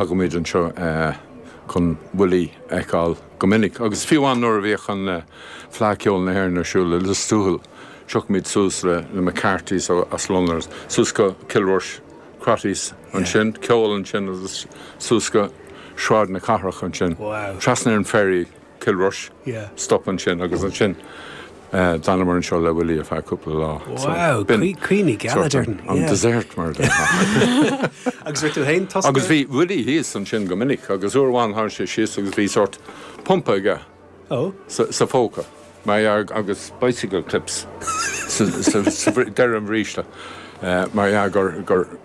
Thagaimid anseo chun Willie a fheiceáil go minic, agus fiú amháin nuair a bhíodh an Fleadh Ceoil na hÉireann ar siúl i Lios Tuathail, thiocfaimis suas le na McCartys as Londain, suas go Cill Rois, Crotty's ansin, ceol ansin, agus suas go Sráid na Cathrach ansin, trasna ar an ferry. Cill Rois. Yeah. Stop ansin agus ansin d'fhanamar anseo le Willie ar feadh cúpla lá. Wow, caoi na gealaí sort of an desert mar a déarfá. Agus raibh tú féin tosca? Agus bhí Willie thíos ansin go minic agus uair amháin tháinig sé síos agus bhí sórt pumpa aige sa phóca mar dhea agus bicycle clips ar deireadh an bhríste mar dhea gur,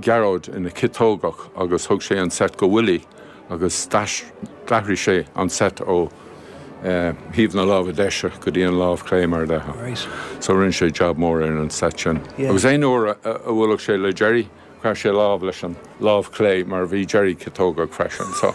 Gearóid ina chiotógach agus thug sé an seit go Willie agus d'athraigh sé an seit ó thaobh na láimhe deise go dtí an lámh clé mar a bheadh. So rinne sé jab mór ar an seit sin. Agus aon uair a bhuaileadh sé le Gerry, chroith sé lámh leis an lámh clé mar bhí Gerry ciotógach freisin. So.